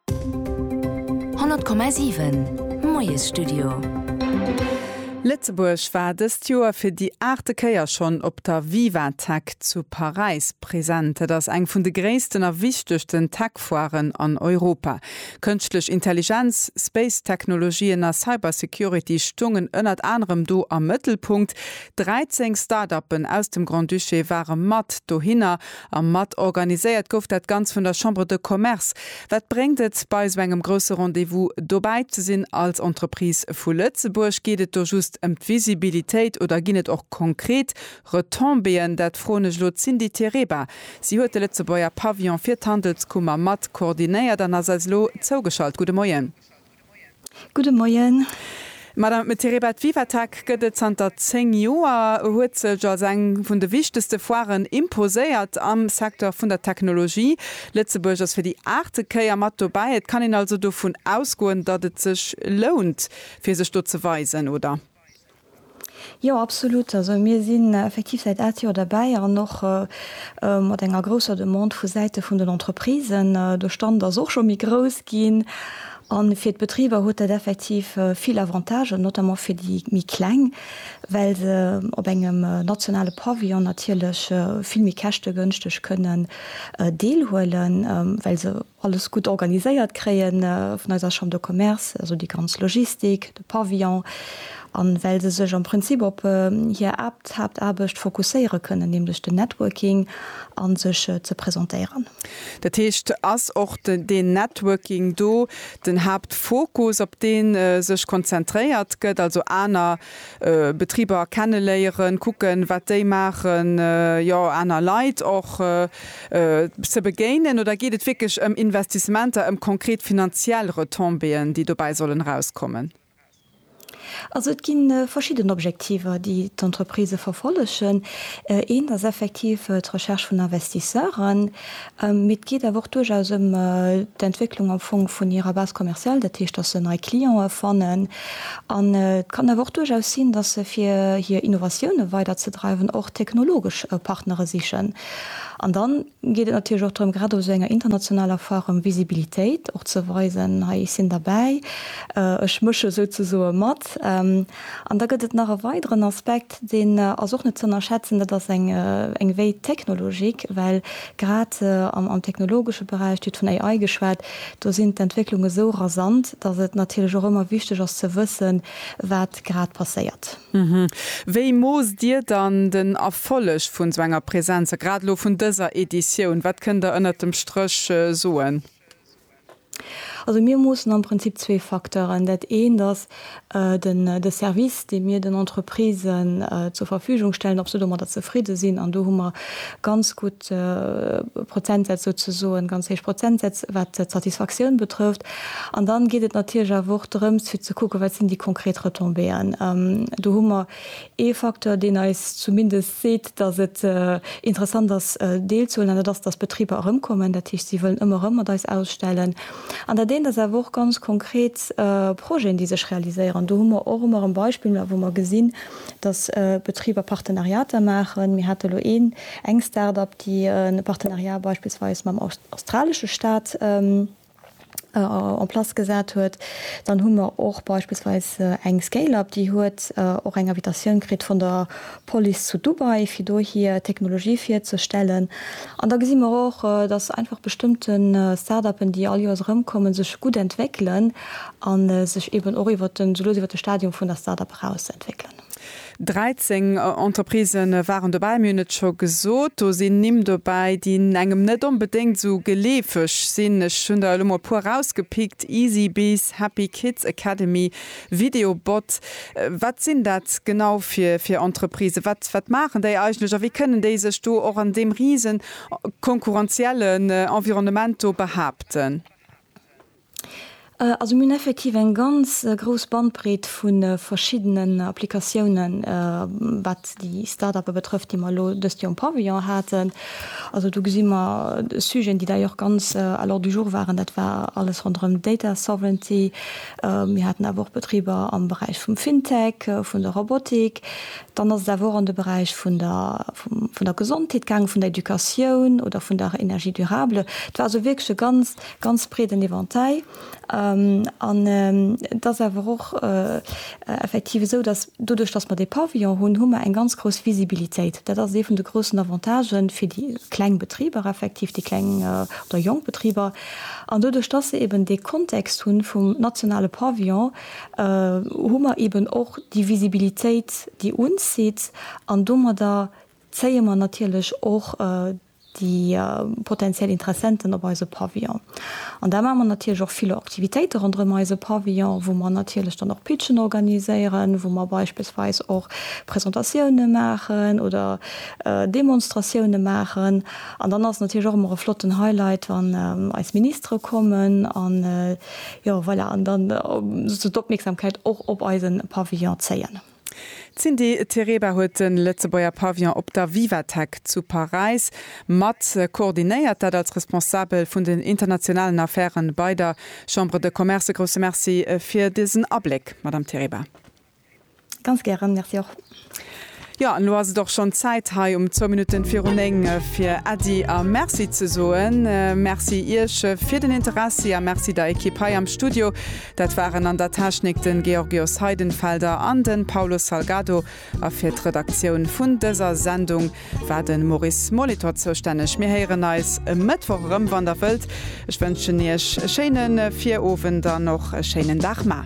100,7 Moiesstudio Lëtzebuerg war dëst Joer fir déi aachte Kéier schonn op der Vivatech zu Paräis present. Et ass eng vun de gréissten a wichtegsten Tech-Foiren an Europa. Kënschtlech Intelligenz, Space-Technologien a Cybersecurity stoungen ënnert anerem do am Mëttelpunkt. 13 Start-Uppen aus dem Grand-Duché ware mat dohinner A mat organiséiert gouf dat Ganz vun der Chambre de Commerce. Wat bréngt et, bei esou engem grousse Rendez-vous dobäi ze sinn? Als Entreprise vu Lëtzebuerg, geet et do just ëm d'Visibilitéit oder ginn et och konkret Retombéeën? Dat froen ech elo d'Cindy Tereba. Si huet de Lëtzebuerger Pavillon fir d'Handelskummer mat koordinéiert an ass eis elo zougeschalt. Gudde Moien. Gudde Moien. Madame Mtereba, d'Vivatec gëtt et zanter 10 Joer, huet sech als eng vun de wichtegste Foiren imposéiert am Secteur vun der Technologie. Lëtzebuerg ass fir déi aachte Kéier mat dobäi. Et kann een also dovun ausgoen, datt et sech lount, fir sech do ze weisen, oder? Jo, absolut. Also mir sinn effektiv säit aat Joer derbäi an och mat enger grousser Demande vu Säite vun den Entreprisen. De Stand ass och scho méi grouss ginn an fir d'Betriber huet dat effektiv vill Avantagen, notamment fir déi méi kleng, well se op engem nationale Pavillon natierlech vill méi käschtegënschteg kënnen deelhuelen, well se alles gutt organiséiert kréie vun eiser Chambre de Commerce, also déi ganz Logistik, de Pavillon, a well se sech am Prinzip op hir Aapthaaptaarbecht fokusséiere kënnen, nämlech den Networking a sech ze presentéieren. Dat heescht, ass och deen Networking do den Haaptfokus, op dee sech konzentréiert gëtt, also aner Betriber kenneléieren, kucken, wat déi maachen, jo, aner Leit och ze begéinen oder geet et wierklech ëm Investissementer, ëm konkret finanziell Retombéeën, déi dobäi sollen erauskommen? Also et gi verschidden Objektiver, déi d'Entreprisë verfollegen. Eent ass effektiv d'Recherche vun Investisseuren, mee et geet awer och duerchaus ëm d'Entwécklung am Fong vun hirer Base commerciale, dat heescht, datt se nei Clientë fannen. An et kann awer och duerchaus sinn, datt se fir hir Innovatioune weiderzedreiwen och technologesch Partnere sichen. An dann geet et natierlech och drëm, grad op esou enger internationaler Foire ëm Visibilitéit och ze weisen, hei ech sinn derbäi, ech mësche souzesoe mat. An da gëtt et nach e weideren Aspekt, deen ass och net ze ënnerschätzen, dat ass eng eng Veille technologique, well grad am technologesche Beräich, Dir hutt vun AI geschwat, do sinn d'Entwécklunge sou rasant, datt et natierlech och ëmmer wichteg ass ze wëssen, wat grad passéiert. Wéi moosst Dir dann den Erfolleg vun sou enger Präsenz a grad elo vun dëser Editioun? Wat kënnt Der ënnert dem Stréch soen? Also mir moossen am Prinzip zwee Facteuren. Dat eent ass de Service, dee mir den Entreprisen zur Verfügung stellen, ob se domadder zefridde sinn. An do hu mer ganz gutt héich Prozentsätz souzesoen, ganz héich Prozentsätz, wat d'Satisfactioun betrëfft. An dann geet et natierlech awer och drëms fir ze kucken, wat sinn déi konkret Retombéeën. Do hu mer ee Facteur, deen eis zumindest seet, datt et interessant ass deelzehuelen, an dat ass, datt d'Betriber erëmkommen, dat heescht, si wëllen ëmmer erëm mat eis ausstellen. An dat eent ass awer och ganz konkret Projeten, déi sech realiséieren. Do hu mer och ëmmer erëm Beispiller, wou mer gesinn, datt Betriber Partenariater maachen. Mir hate lo een, eng Start-up, déi e Partenariat beispillsweis mam australesche Staat en place gesat huet. Dann hu mer och beispillsweis eng Scale-up, déi huet och eng Invitatioun kritt vun der Police zu Dubai, fir do hir Technologie virzestellen. An da gesi mer och, datt einfach bestëmmte Start-upen, déi all Joers erëmkommen, sech gutt entwéckelen. A sech eben och iwwert den, soulos iwwert de Stadium vun der Start-up eraus ze entwéckelen. 13 Entreprisë waren dobäi. Mir hunn et scho gesot, do sinn Nimm dobäi, déi engem net onbedéngt esou geleefeg sinn. Ech hunn der elo mol e puer erausgepickt, Easybees, Happy Kids Academy, Videobot. Wat sinn dat genau fir Entreprisë? Wat maachen déi eigentlech a wéi kënnen déi sech do och an deem rise konkurrenziellen Environnement do behaapten? Also mir hunn effektiv eng ganz grouss Bandbreet vu verschiddenen Applikatiounen, wat déi Start-uppe betrëfft, déi mer elo dëst Joer um Pavillon haten. Also do gesi mer Sujeten, déi dei Joer och ganz à l'ordre du jour waren, dat war alles ronderëm Data Sovereignty. Mir haten awer och Betriber am Beräich vum FinTech, vun der Robotik. Dann ass et awer och an de Beräich vun der, vun der Gesondheet gaangen, vun der Educatioun oder vun der Energie durable. Et war also wierklech e ganz ganz breeden Eventail an et ass awer och effektiv esou, datt doduerch, datt mer dee Pavillon hunn, hu mer eng ganz grouss Visibilitéit. Dat ass ee vun de groussen Avantagë fir déi kleng Betriber, effektiv déi kleng oder jonk Betriber. An doduerch, datt se eeben dee Kontext hu vum nationale Pavillon, hu mer eeben och déi Visibilitéit, déi uns zitt an domadder zéie mer natierlech och déi potentiell Interessenten op eise Pavillon. An da maache mer natierlech och vill Aktivitéite ronderëm eise Pavillon, wou mer natierlech dann och Pitchen organiséieren, wou mer beispillsweis och Presentatioune maachen oder Demonstratioune maachen. An dann ass et natierlech och ëmmer e flotten Highlight, wann eis Ministere kommen an, jo voilà, an dann sozusagen d'Opmierksamkeit och op eise Pavillon zéien. D'Cindy Tereba huet de Lëtzebuerger Pavillon op der Vivatech zu Paräis mat koordinéiert, dat als Responsabel vun den internationalen Affäre bei der Chambre de Commerce. E grousse Merci fir dësen Abléck, Madame Tereba. Ganz gären, Merci och. Jo, an elo ass et och schonn Zäit hei um zwou Minutten viru néng fir Äddi a Merci ze soen. Merci Iech fir den Interessi a Merci der Ekipp hei am Studio Dat waren an der Technik de Georgios Heidenfelder an de Paulo Salgado a fir d'Redaktioun vun dëser Sendung war de Maurice Molitor zoustänneg. Mir héieren eis e Mëttwoch erëm, wann Der wëllt. Ech wënschen Iech e schéine Virowend an och e schéinen Dag. Mar.